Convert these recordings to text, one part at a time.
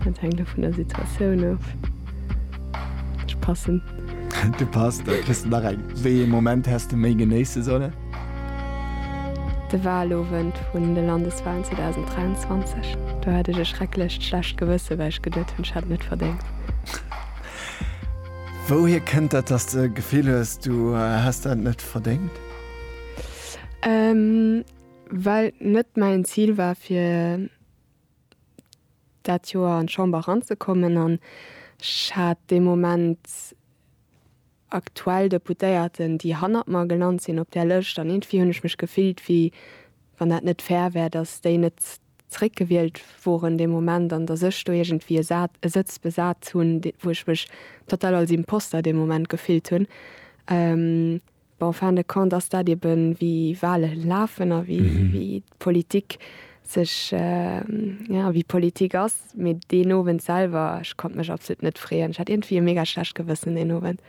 Dat hänkt jo vun der Situatioun of. Ech passen. Du passt, da kriss de nach eng. Wéi ee Moment häss de méi genéisse sollen? De Wahlowend vun de Landeswahlen 2023. Do hat ech e schrecklecht schlecht Gewësse, well ech geduet hunn, ech hätt net verdéngt. Wouhier kënnt dat, dass de d'Gefill hues, du häss dat net verdéngt? Well et net mäin Zil war, fir. dat Joer an d'Chamber eranzekommen an ech hat dee Moment aktuell Deputéierten, déi hannert mer gelant sinn op där Lëscht an iergendwéi hunn ech mech gefillt, wéi wann dat net fair wär, datt déi net zréckgewielt woren dee Moment an datt ech do iergendwéi e Sëtz besat hunn, wou ech mech total als Imposter dee Moment gefillt hunn. En fin de compte ass dat eben, wéi Wahle lafen a wéi d'Politik sech, jo, wéi d'Politik ass. Mee deen Owend selwer, ech konnt mech absolut net freeën. Ech hat iergendwéi e mega schlecht Gewëssen deen Owend.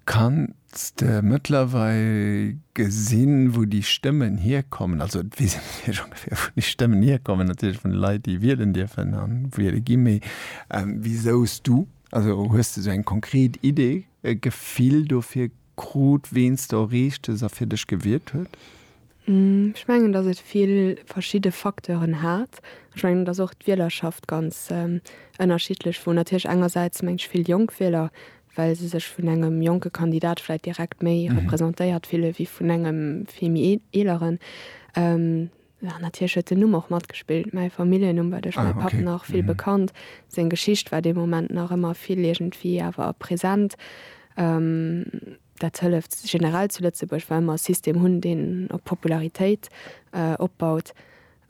Kanns de mëttlerweil gesinn, wou déi Stëmmen hierkommen? Also, et weess een natierlech ongeféier, wou déi Stëmmen hierkommen, natierlech vun de Leit, déi wielen dierfen a wiele ginn. Mee wisou s du, also hues de esou eng konkret Idee? e Gefill dofir krut, ween s de erreecht hues a fir dech gewiert huet? Ech mengen, datt et vill verschidde Facteuren hat. Ech mengen, et ass och d'Wielerschaft ganz ënnerschiddlech, wou natierlech engersäits mengt vill jonk Wieler, well se sech vun engem jonke Kandidat vläit direkt méi representéiert fille wéi vun engem vill méi eeleren. Jo, natierlech huet den Numm och matgespillt. Mäi Familljennumm war duerch mäi Papp nach vill bekannt. Seng Geschicht war dee Moment nach ëmmer vill iergendwéi awer present. Dat hëlleft generell zu Lëtzebuerg, well mer e System hunn, deen op Popularitéit opbaut.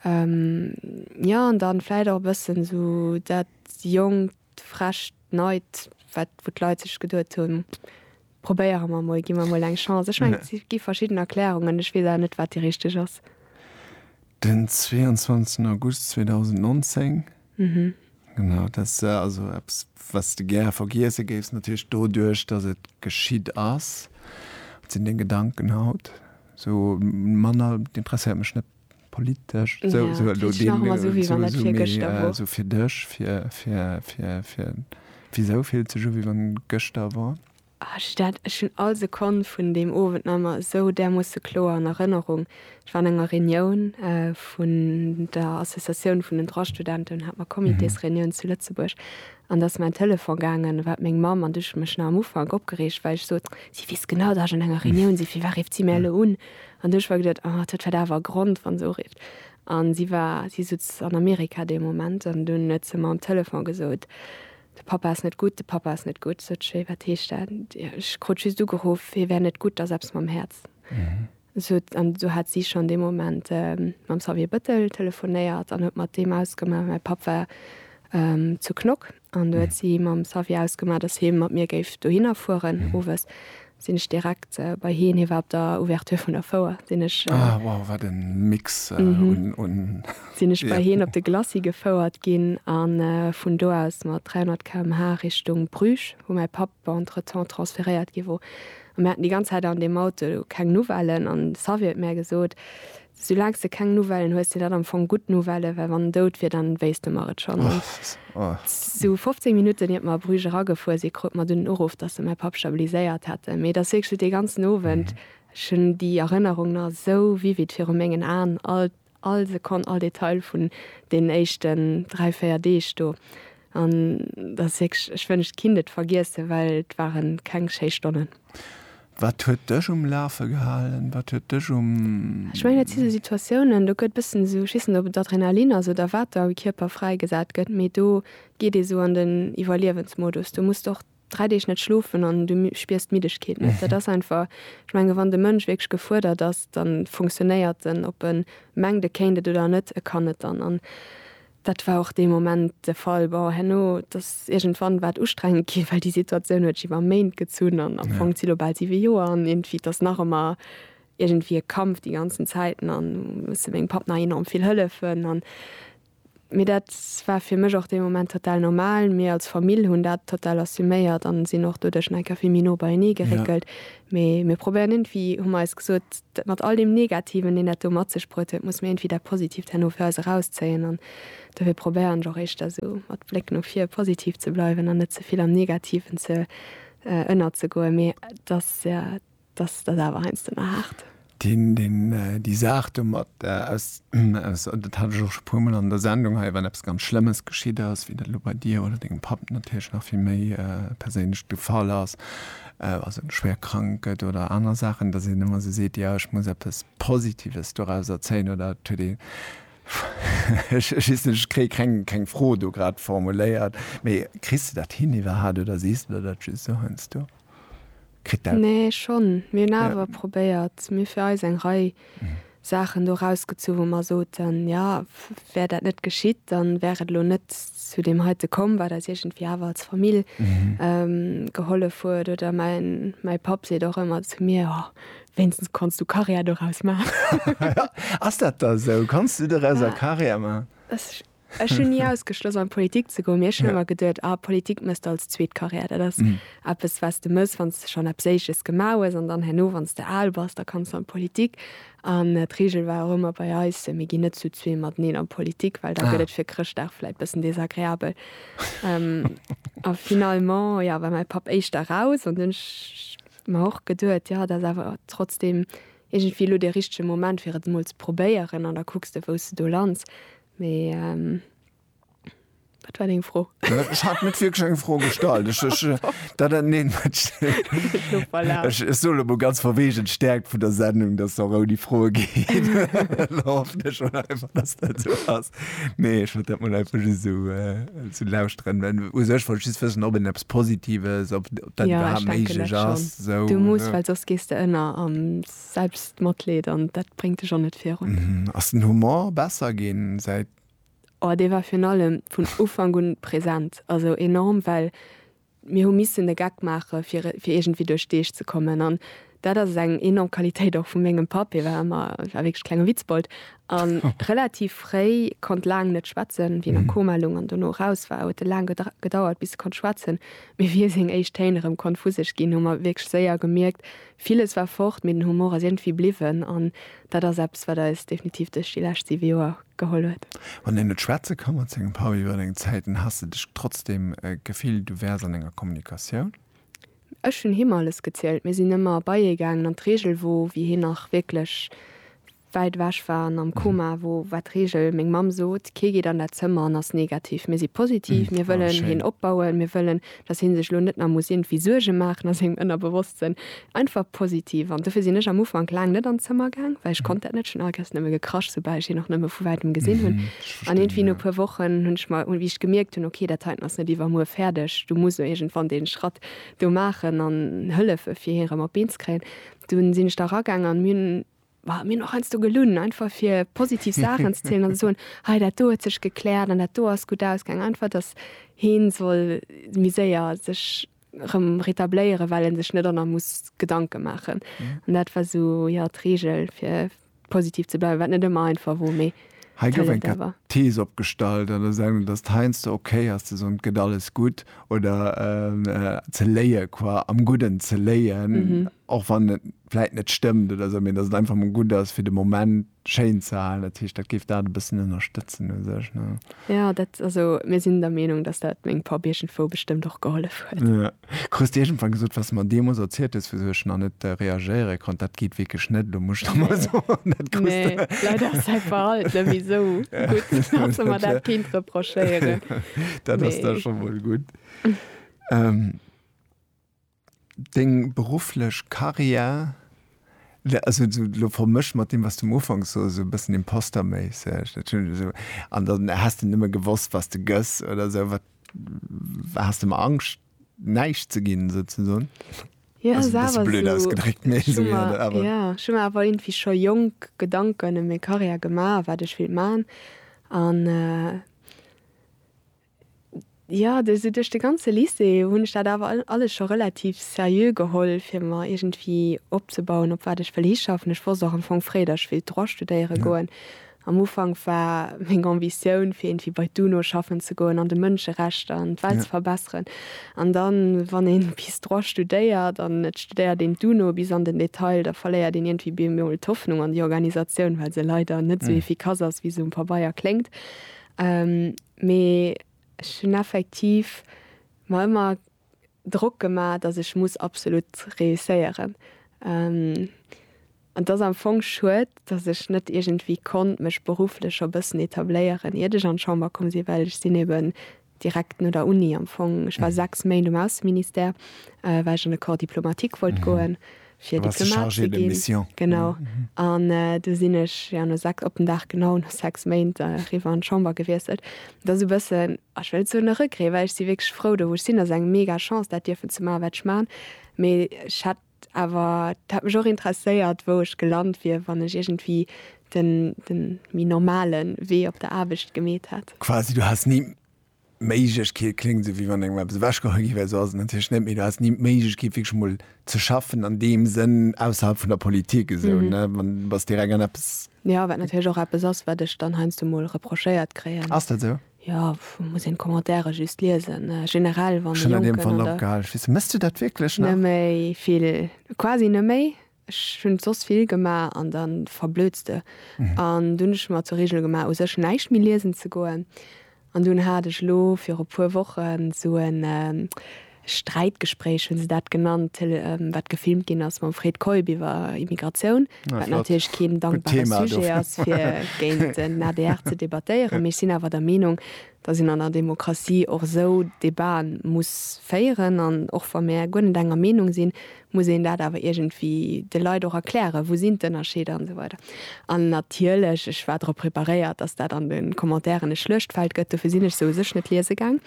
Jo, an dann vläicht och e bëssen esou dat jonkt, frescht Neit, wat, wou d'Leit sech geduet hunn, probéiere mer emol, gi mer emol eng Chance. Ech mengen, et gi verschidden Erklärungen, ech weess awer net, wat déi richteg ass. Den 22 August 2019, genau, dat ass also eppes, wat s de gäre vergiesse géifs, natierlech doduerch, datt et geschitt ass. Dat sinn deng Gedanken haut. Esou manner, et interesséiert mech net. politesch sou sou elo sou fir dech fir fir fir fir wisou fillt sech u wéi wann gëschter wor? Ech dat ech hunn all Sekonn vun deem Owend nach emmer esou därmoosse kloer an Erënnerung. Ech war an enger Reunioun vun der Associatioun vun den Droit-Studenten un hat mer Comitésreunioun zu Lëtzebuerg an da ass mäin Telefon gaangen, war et meng Mamm an du ech mech nach am Ufank opgereegt well ech sot si weess genau dat ech an enger Reunioun si fir wat rifft si mär elo un? An du ech war geduet, oh, dat wäert awer e Grond, wa se urifft. An si war, si sutz an Amerika dee Moment. An dunn huet se mer um Telefon gesot, De Papa ass net gutt, de Papa ass net gutt. Sot ech, Wéi, wat heescht dat? Ech krut just ugeruff, hie wär net gutt, ass eppes mam Häerz. Sot, an du hat si schonn dee Moment mam Xavier Bëttel telefonéiert an huet mat deem ausgemaach. Mäi Papp war zu Knock. An du huet si mam Xavier ausgemaach, dass hie mat mir géif dohinner fueren. Owes sinn ech direkt bei hien, hie war op der Ouverture vun der Fouer, sinn ech. Ah, wow, wat e Mix un. Sinn ech bei hien op de Glacis gefouert ginn a vun do aus mat 300 km/h Richtung Bruges, wou mäi Papp entretemps transferéiert gi wor. A mir haten déi ganz Zäit an deem Auto keng Nouvellen an de Xavier huet mär gesot, Soulaang s de keng Nouvellen hues, sinn dat am Fong gutt Nouvellë, well wann en dout wier, dann wéisst de mer et schonn. An esou 15 Minutten iert mer a Bruges eragefuer sinn, krute mer dunn den Uruff, datt se mäi Papp stabiliséiert hätten. Mee et ass wierklech dee ganzen Owend, ech hunn déi Erënnerung nach esou vivid viru mengen Aen, all, all Sekonn, all Detail vun deenen éischten dräi, véier Deeg do. An dat ass wierklech, ech wënscht et kinnt et vergiessen, well et ware keng schéi Stonnen. Wat huet dech um Lafe gehalen? Wat huet dech um. Ech mengen dat si sou Situatiounen, do gëtt e bëssen esou, ech weess net ob et Adrenalin ass oder wat da am Kierper fräigesat gëtt, mee do geet ee sou an den Iwwerliewensmodus. Do muss de och 3 Deeg net schlofen an du spiers d'Middegkeet net. Dat ass einfach, ech menge wann de Mënsch wierklech gefuerdert ass, da funktionéiert en. Ob e mengt e kéint et oder net, e kann et dann. An dat war och dee Moment de Fall. Bon, herno, et ass iergendwann war et ustrengend ginn, well déi Situatioun huet sech iwwer Méint gezunn an am Fong zitt lo bal siwe Joer an. Iergendwéi, et ass nach ëmmer iergendwéi e Kampf déi ganzen Zäiten an hu musse mengem Papp nach enorm vill hëllefen an Mee dat war fir mech och dee Moment total normal. Mir als Famill hunn dat total assuméiert an sinn och doduerch nach eng Kéier vill méi no beienee geréckelt. Yeah. Mee mir probéieren iergendwéi, hu mer eis gesot, dat mat all deem Negativen, deen dat do mat sech bruet huet, musse mir iergendwéi dat Positiivt herno fir eis erauszéien. An dofir probéieren ech och éischter esou mat Bléck no vir positiv ze bleiwen an net ze vill am Negativen ze ënnerzegoen. Mee et ass Dass dat awer heiansdo mar haart. Déi Saach domat, dat hat ech och scho e puermol an der Sendung hei, wann eppes ganz Schlëmmes geschitt ass, wéi dat elo bei dir oder dengem Papp natierlech nach vill méi perséinlech de Fall ass, also en schwéier krank gëtt oder aner Saachen, dass een ëmmer esou seet, jo ech muss eppes Positives dorauser zéien oder et huet ee, ech weess net, ech kréie keng Fro do grad formuléiert, mee kriss de dat hin iwwerhaapt oder sees de dat just esou heiansdo? Kritt dat. Nee, schonn. Mir hunn awer probéiert, mir fir eis eng Rei Saachen do erausgezu wou mer soten, jo, wär dat net geschitt, da wär et elo net zu deem heite komm, wat eis iergendwéi awer als Famill gehollef huet. Oder mäi Papp seet och ëmmer zu mir, oh, wéinstens kanns du Karriär doraus maachen. Ass dat da esou? Kanns du doraus eng Karriär maachen? Ech hunn ni ausgeschloss an d'Politik ze goen, mee ech hunn ëmmer geduet, ah Politik mëss de als zweet Carrière, dat ass eppes wat s de mëss wann s de schonn eppes éisches gemaach hues an dann herno wann s de al bass, da kanns de an d'Politik. An d'Reegel war och ëmmer bei eis, mir ginn net zu zwee mateneen an d'Politik, well da gëtt et fir Chrëschtdag vläit bëssen desagreabel. A finalement, jo, war mäi Papp éischter raus an dunn hunn ech mer och geduet, jo, dat ass awer trotzdem, Iergendwéi elo de richtege Moment fir et emol ze probéieren an da kucks de wou s de do lands. Mee wat war deng Fro? Ech hat net wierklech eng Fro gestallt. Ech soen emol ganz verwegen, d'Stäerkt vun der Sendung, datt se och ouni Froe geet. Hoffen ech mol einfach, datt dat esou ass. Nee, ech wollt dat mol einfach just esou lauschteren. U sech wollt ech just wëssen, ob een eppes Positives, dat iwwerhaapt méiglech ass. Du muss, well soss gees de ënner am Selbstmatleed an dat bréngt dech och net virun. Ass den Humor besser ginn säit. Oh, dee war virun allem vun Ufank un present, also enorm, well mir hu missen e Geck maache fir iergendwéi duerch d'Deeg ze kommen an Dat ass eng enorm Qualitéit och vu mengem Papp. Hie war ëmmer, war wierklech klenge Witzbold a relativ fréi, konnt laang net schwätzen. Wéi en a Koma loung an dono eraus war, huet e laang gedauert, bis e konnt schwätzen. Mee wéi e seng éischt Téin erëm konnt vu sech ginn, hu mer wierklech séier gemierkt, villes war fort, mee den Humor ass iergendwéi bliwwen. An dat ass eppes, wat eis definitiv duerch déi lescht siwe Joer geholl huet. Wann een net schwätze ka mat sengem Papp iwwer eng Zäit, dann has de dech trotzdeem gefillt, du wäers an enger Kommunikatioun? Ech hunn him alles gezielt. Mir sinn ëmmer bei hie gaangen an d'Regel wor, wéi hien nach wierklech wäit ewech war an am Koma wor, war d'Regel, meng Mamm sot, kee geet an dat Zëmmer an ass negativ. Mir si positiv, mir wëllen hien opbauen, mir wëllen, datt hie sech elo net nach muss iergendwéi Suerge maachen a sengem Ënnerbewosstsënn. Einfach positiv. An dofir sinn ech am Ufank laang net an d'Zëmmer gaang, well ech konnt dat net. Ech hunn alleguerst nëmme gekrasch, soubal ech hien och nëmme vu wäitem gesinn hunn. An irgendwie no puer Wochen hunn ech mer, wéi ech gemierkt hunn, ok, dat heiten ass net iwwer muer fäerdeg, du muss elo iergendwann dee Schratt do maachen an hëllefe fir hien erëm op d'Been ze kréien, dunn sinn ech da eragangen an mir hunn, bah, mir hunn och heiansdo gelunn, einfach fir positiv Saachen ze zielen an ze soen, hei dat do huet sech gekläert an dat do ass gutt ausgaangen, einfach dass hien soll méi séier sech. rëm rétabléieren well en sech net an der muss Gedanken maachen an dat war sou jo d'Regel fir positiv ze bleiwen, wat net ëmmer einfach wor mee Hei gouf eng These opgestallt an der Sendung dass heiansdo ok ass ze soen et gëtt alles gutt oder ze léie qua am Gudden ze léien och wann et vläit net stëmmt oder sou mee dass et einfach mol gutt ass fir de Moment schéin ze halen. Dat heescht, dat géif dat e bëssen ënnerstëtzen u sech, ne? Jo, dat, also mir sinn der Meenung, dass dat meng Paar Bierchen Fou bestëmmt och gehollef huet. Jo. Krus de iergendwann gesot, wat s de mer deemools erzielt hues, wisou ech nach net reagéiere konnt, dat geet wierklech net, elo muss ech der mol soen, dat krus de. Nee, leider ass säi Verhalten nëmme esou gutt, dass e mer dat kéint reprochéieren. Dat ass da scho mol gutt. Deng berufflech Carrière, also elo vermëscht mat deem, wat du um Ufank soss, esou e bëssen imposterméisseg, dat hunn ech esou, an dann häss de nëmme gewosst, was de gëss oder esou. Wat has de emmer Angscht, näischt ze ginn, esou ze soen? Jo, ass awer esou. Blöd ausgedréckt, mee esou wier dat awer. Jo, ech hu mer awer iergendwéi scho jonk Gedanken ëm meng Carrière gemaach, wat ech wéilt maachen an. Jo, de sou duerch de ganze Lycée hunn ech dat awer alles scho relativ seriö geholl, fir mer iergendwéi opzebauen, op wat ech wëll hischaffen. Ech wosst och am Fong fréi, datt ech wéilt Droit studéiere goen. Am Ufank war meng Ambitioun, fir iergendwéi bei d'UNO schaffen ze goen an de Mënscherechter an d'Welt ze verbesseren. An dann, wann ee bis Droit studéiert an et studéiert een d'UNO bis an den Detail, da verléiert een iergendwéi bemol d'Hoffnung an déi Organisatioun, well se leider net sou efficace ass, wéi se um Pabeier kléngt. Mee ech hunn effektiv mer ëmmer Drock gemaach, datt ech muss absolut reusséieren. An et ass am Fong schued, datt ech net iergendwéi konnt mech berufflech scho bëssen etabléieren, iert ech an d'Chamber komm sinn, well ech sinn eeben direkt no der Uni am Fong, ech war sechs Méint um Ausseministère, well ech an de Corps diplomatique wollt goen, fir Diplomat ze ginn, genau, an du sinn ech jo no sechs, op den Dag genau, no sechs Méint eriwwer an d'Chamber gewiesselt. Et ass e bëssen, ech wëll net soen e Regret, well ech si wierklech frou do wou ech sinn, ass eng mega Chance dat dierfen ze maachen wat ech maachen, mee ech hätt awer, et hätt mech och interesséiert wou ech gelant wier wann ech iergendwéi de méi normale Wee op der Aarbecht gemeet hätt. Quasi du häss ni Méiglechkeet kléngt esou, wéi wann engem eppes ewechgeholl gi wär. Esou ass et natierlech net, mee do häss ni d'Méiglechkeet, wierklech emol ze schaffen an deem Sënn ausserhalb vun der Politik esou, ne? Wann, du bass direkt an eppes. Jo, wat natierlech och eppes ass, wat ech dann heiansdo emol reprochéiert kréien. Ass dat esou? Jo, muss een d'Commentairen just liesen, generell, wann e Jonken an der. Ech hunn an deem Fall opgehal. Ech weess, méchs du dat wierklech nach? Net méi vill, quasi net méi. Ech hunn soss vill gemaach an da verblödst de. An dunn hunn ech mer zur Reegel gemaach u sech näischt méi liesen ze goen. An dunn hat ech elo viru puer Wochen sou e Sträitgespréich, hunn se dat genannt, Tele wat gefilmt ginn ass mam Fred Keup iwwer Immigratioun, wat natierlech keen dankbare Sujet ass fir géint den adr ze debattéieren. Mee ech sinn awer der Meenung, datt een an der Demokratie och esou Debaten muss féieren. An och wa mir guer net enger Meenung sinn, muss een dat awer iergendwéi de Leit och erklären, wou sinn d'Ënnerscheeder an esou weider. An natierlech, ech war drop preparéiert, datt dat an de Commentairen e Schluechtfeld gëtt, dofir sinn ech se u sech net liese gaang.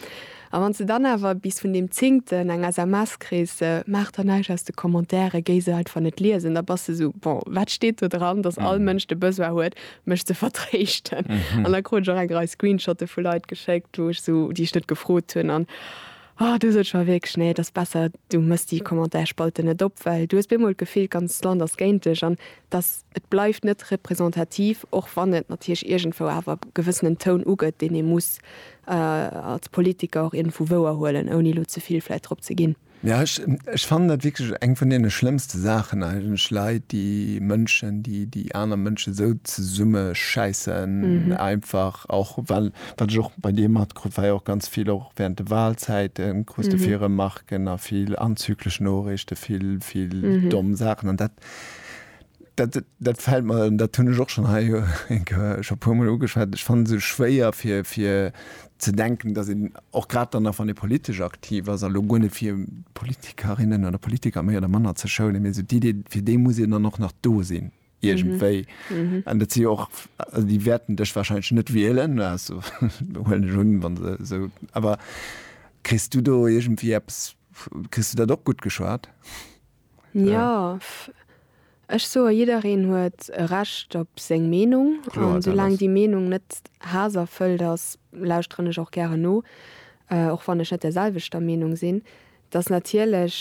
A wann s de dann awer bis vun deem Zéngten eng SMS kriss, Maach der näischt aus de Commentairen, géi se einfach net liesen, da bass de esou, Bon, wat steet do dran, datt all Mënsch de Besoin huet, mech ze vertréischten? An da krut ech och eng Rei Screenshotte vu Leit geschéckt, wou ech esou, déi ech net gefrot hunn. An. Oh du sot scho wierklech nee et ass besser du mëss déi Commentairspalten net op, well du hues bemol d'Gefill d'ganzt Land ass géint dech an dass et bleift net representativ, och wann et natierlech iergendwou awer gewëssenen Toun ugëtt deen ee muss als Politiker och iergendwou wouer huelen ouni elo ze vill vläit drop ze ginn. Jo ech ech fannen dat wierklech eng vun deene schlëmmste Saachen eigentlech, Leit déi Mënschen déi déi aner Mënschen esou zesummeschäissen einfach och well wat ech och bei dir mat krut wei och ganz vill och während de Wahlzäiten krus de vill Remarquen a vill anzüglich Noorichten, vill vill domm Saachen an dat dat dat fällt mer, an dat hunn ech och schon hei schon puer mol ugeschwat, ech fannen se schwéier fir fir ze denken, dass een och grad dann nach wann ee politesch aktiv ass, elo guer net fir Politikerinnen oder Politiker méi oder manner ze schounen, mee esou d'Idee fir déi muss een dann och nach do sinn. iergendwéi. An dat si jo och, also déi wäerten dech wahrscheinlech net wielen, also huelen ech un, wa se esou, awer kriss du do iergendwéi eppes, kriss du dat och gutt geschwat? Jo, ech soe jiddereen huet e Recht op seng Meenung. Kloer, dat ass. An soulaang déi Meenung net haasserfëllt ass, lauschteren ech och gären no, och wann ech net der selwechter Meenung sinn. Et ass natierlech,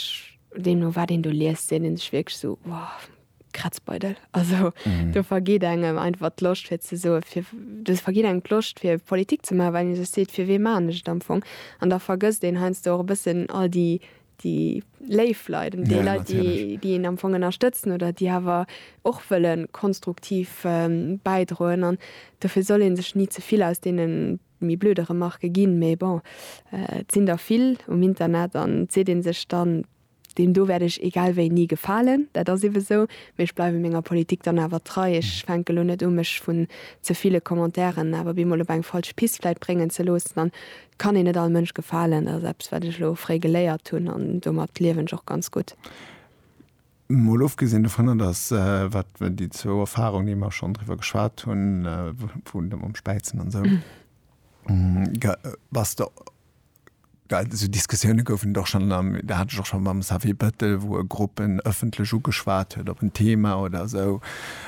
deemno wat een do liest, seet ee sech wierklech esou, wow, Kratzbeidel. Also mhm. du vergeht engem einfach Loscht fir ze so du vergeht eng Loscht fir Politik ze machen, weil se seet fir we manecht am Fong. An da vergësst den heinsst och bëssen all die die Leiifleiden, die ja, Leit die, die en am Fong ënnerstëtzen oder die hawer och wëllen konstruktiv ähm, beidroen an dofir soll en sech nie zevill aus denen mi blödere Marke ginn, méi bon äh, sinn der vill um Internet an se den sech dann Deem do wäert ech egal wéi ni gefalen, dat ass ebe sou. Mee ech bleiwe menger Politik dann awer trei. Ech fänke elo net u mech vun ze ville Commentairen awer bemol op eng falsch Pist vläit bréngen ze loossen. An et kann een net all Mënsch gefalen, dat ass eppes wat ech elo fréi geléiert hunn an domat liewen ech och ganz gutt. Mol ofgesinn dovunner, datt wat déi zwou Erfarung déi mer schonn driwwer geschwat hunn, vun dem Späizen an esou, bass de well esou Diskussioune goufen et och schonn am, dat hat ech och schonn mam Xavier Bettel, wou e Gruppen ëffentlech ugeschwat huet op en Thema oder esou,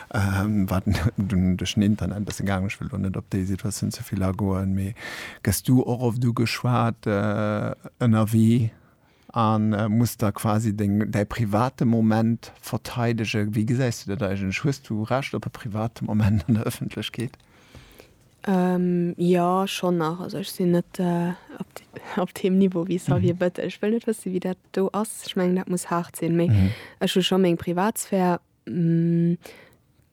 wat dunn duerch den Internet e bësse gaangen ass. Ech wëll elo net op déi Situatioun ze vill agoen. Mee gëss du och oft ugeschwat ënnerwee a muss da quasi deng, däi private Moment verteidegen? Wéi gesäis du dat eigentlech? Hues du Recht op e private Moment an der Ëffentlechkeet? Jo, schonn nach. Also ech sinn net op deem Niveau wéi Xavier Bettel. Ech wëll net wësse wéi dat do ass. Ech mengen dat muss haart sinn. Mee ech hu scho meng Privatsphär.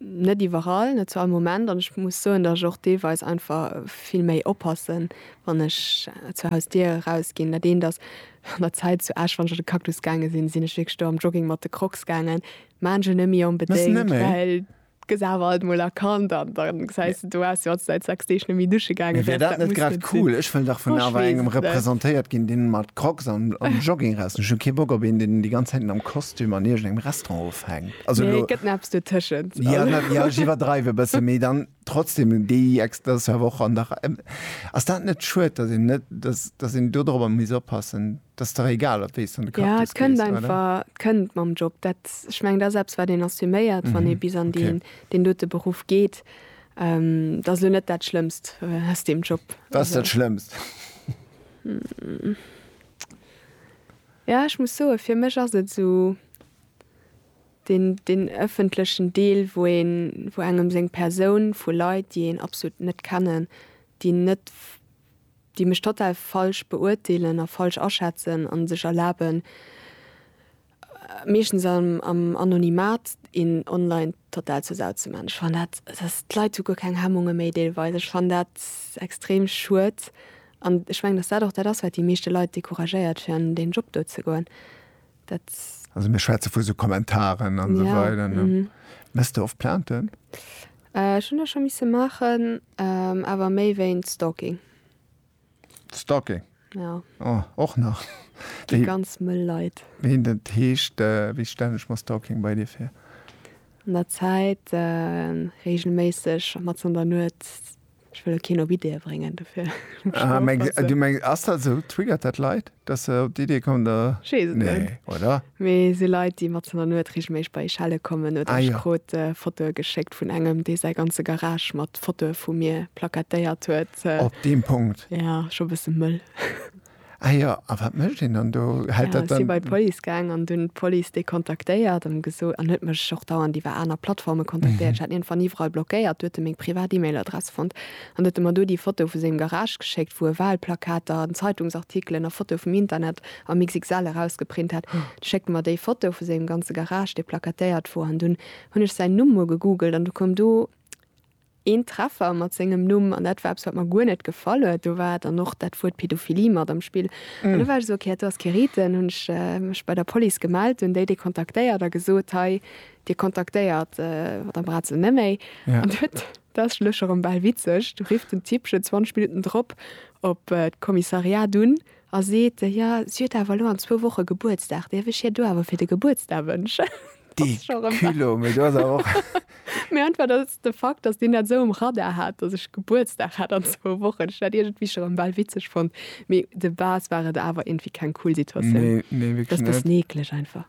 Net iwwerall, net zu all Moment. An ech muss soen, datt ech och deelweis einfach vill méi oppassen, wann ech zur Hausdier erausginn. Dat eent ass, an der Zäit zu Esch, wann ech an de Cactus gaange sinn, sinn ech wierklech do am Jogging mat de Crocs gaangen. Maachen ech net méi onbedéngt, well. Gëss awer alt mol erkannt an da gesäis de, du wars jo alt säit 6 Deeg net méi dusche gaangen. Mee wär dat net grad cool? Ech wëll dach vun awer engem representéiert ginn, deen mat Crocs an Jogging raus. Ech hu kee Bock op een, deen déi ganz Zäit am Kostüm an iergendengem Restaurant ofhänkt. Also elo. Nee, et gëtt nach eppes dotëschent. Jo, jo, ech iwwerdreiw e bëssen, mee dann trotzdem déi ex. Dat ass jo awer och an der Rei. Ass dat net schued, dass een net, dass, dass een dodrobber misst oppassen? 't ass dach egal op wéi s de an de Cactus gees, oder? Ja, 't kënnt einfach, 't kënnt mam Job. Dat, ech mengen, dat ass eppes, wat een assuméiert, wann ee bis an deen, deen dote Beruff geet. Dat ass elo net dat Schlëmmst aus deem Job. Wat ass dat Schlëmmst? Ja, ech muss soen, fir mech ass et esou deen, deen ëffentlechen Deel, wou een, wou engem seng Persoun, vu Leit, déi een absolut net kennen, déi net déi mech total falsch beurteelen a falsch aschätzen a sech erlaben, meeschtens am Anonymat, een online total zur Sau ze man. Ech fannen dat, d'Leit hu guer keng Hemmunge méi deelweis. Ech fannen dat extrem schued an ech mengen, datt dat och dat ass, wat déi meeschte Leit decouragéiert, fir an deen Job do ze goen. Also mir schwätze vu sou Kommentaren an sou weider. Mess de oft Plainten? Ech hunn der scho misse maachen, awer méi wéint Stalking. Stalking? Jo. Oh, och nach. Déi ganz mëll Leit. Wéi dat heescht? Wéi stellen ech mer Stalking bei dir vir? An der Zäit reegelméisseg mat an der Nuet. Ech wëll keen op Ideeë bréngen dofir. Ah, meng, du meng ass dat sou triggert dat Leit, dass se op d'Idee kommen da nee, oder? Mee se Leit, déi mat der Nuet regelméig bei Schelle kommen oder ah, ja. krut äh, Fotoe geschéckt vun engem, dee sei ganze Garage mat Fotoe vu mir plakatéiert huet. Äh, op deem Punkt. Ja, scho bësse mëll. Ah jo, a wat mécht een dann do? Hält dat dann. Si bei d'Police gaang an hunn d'Police déi kontaktéiert an gesot, an huet mech och dauernd iwwer aner Plattforme kontaktéiert. Ech hat hien van iwwerall blockéiert. Du huet e meng privat E-Mail-Adress fonnt an huet e mer do déi Foto vu sengem Garage geschéckt, wou e Walplakater, Zeitungsartikelen a Fotoe vum Internet am XXL erausgeprint hat. Du schéckt e mer déi Foto vu sengem ganze Garage, dee plakatéiert wor, an dunn hunn ech säin Numm mol gegoogelt an du koum do. Een Treffer mat sengem Numm, an dat war eppes, wat mer guer net gefall huet. Do war dann och dat Wuert Pedophilie mat am Spill. An do war ech esou, ok, hat do ass kee Rite. Hunn ech mech bei der Police gemellt, hunn déi déi kontaktéiert a gesot, hei, dir kontaktéiert d'Madame Brazell net méi. An do huet, dat ass schonn och erëm bal witzeg, do rifft den Typ schonn 20 Minutten drop op d'Kommissariat un A seet, Jo, si huet awer elo an zwou Woche Gebuertsdag, däerf ech hir do awer fir de Gebuertsdag wënschen? Dee Culot, mee do ass awer och. Mee einfach, dass de Fakt, dass deen dat esou um Radar hat, dass ech Gebuertsdag hat an zwou Wochen, ech dat iergendwéi scho rëm bal witzeg fonnt. Mee de base war et awer iergendwéi keng cool Situatioun. Nee, nee, wierklech net. Dass bëssen eekleg einfach.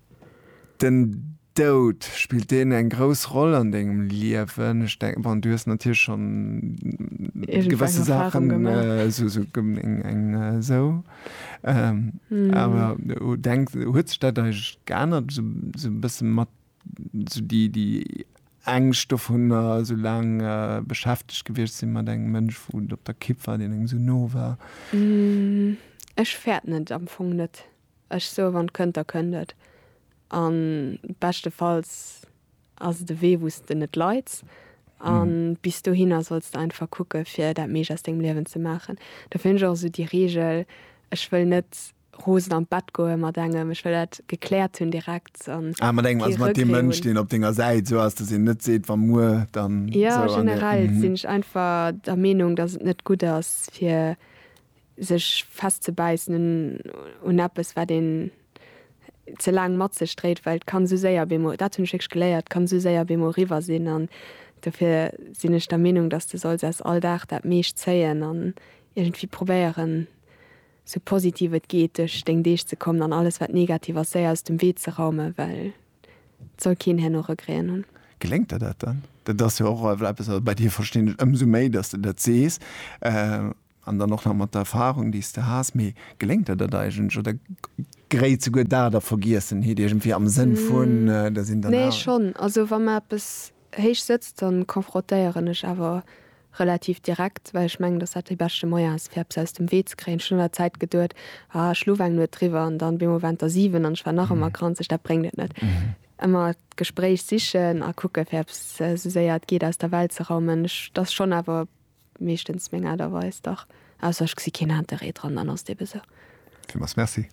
Den Doud, spillt deen eng grouss Roll an dengem Liewen? Ech denken, bon, du hues natierlech schonn gewësse Saachen, esou eng esou, awer denk, huet sech dat eigentlech geännert esou e bësse mat esou déi, déi Ängscht dovunner, esou laang beschäftegt gewiescht sinn mat engem Mënsch, wou et op der Kipp war, deen engem esou no war? Ech fäert net, am Fong net. Ech soe wann et kënnt, da kënnt et. A beschtefalls ass et e Wee wou s de net leids. A bis dohinner solls de einfach kucke fir dat meescht aus dengem Liewen ze maachen. Dofir hunn ech och esou déi Reegel, ech wëll net rosen an d'Bett goe mat engem, ech wëll dat gekläert hunn direkt an kee Regree hunn. Jo generell sinn ech einfach der Meenung, datt et net gutt ass fir sech festzebäissen un eppes wat een ze laang mat sech dréit, well et kann esou séier op eemol, dat hunn ech wierklech geléiert, et kann esou séier op eemol eriwwer sinn an dofir sinn ech der Meenung, datt s de solls aus all Dag dat meescht zéien an iergendwéi probéieren esou positiv et geet duerch deng Deeg ze kommen an alles wat negativ ass séier aus dem Wee ze raumen, well et soll keen herno Regréen hunn. Geléngt der dat dann? Dat ass jo och eppes, wat bei dir, verstinn ech, ëmsou méi datt s de dat sees, An dann och nach mat der Erfahrung, déi s de has. Mee geléngt der dat eigentlech oder gréit souguer dat a Vergiessenheet iergendwéi am Sënn vun, der sinn dann awer. Nee, schonn. Also wa mer eppes héich sëtzt, da confrontéieren ech awer relativ direkt, well ech mengen, dass dat dee beschte Moyen ass, fir eppes aus dem Wee ze kréien. Ech hunn an der Zäit geduet, Ah, ech luef eng Nuet driwwer an dann op eemol waren et der siwen an ech war nach ëmmer granzeg. Dat bréngt et net. Ëmmer d'Gespréich sichen a kucken, fir eppes esou séier et geet aus der Welt ze raumen. Ech, dat ass schonn awer Meeschtens meng Aart a Weis, dach. Ausser ech gesi keen Interêt dran, dann ass et ebe sou. Villmools Merci.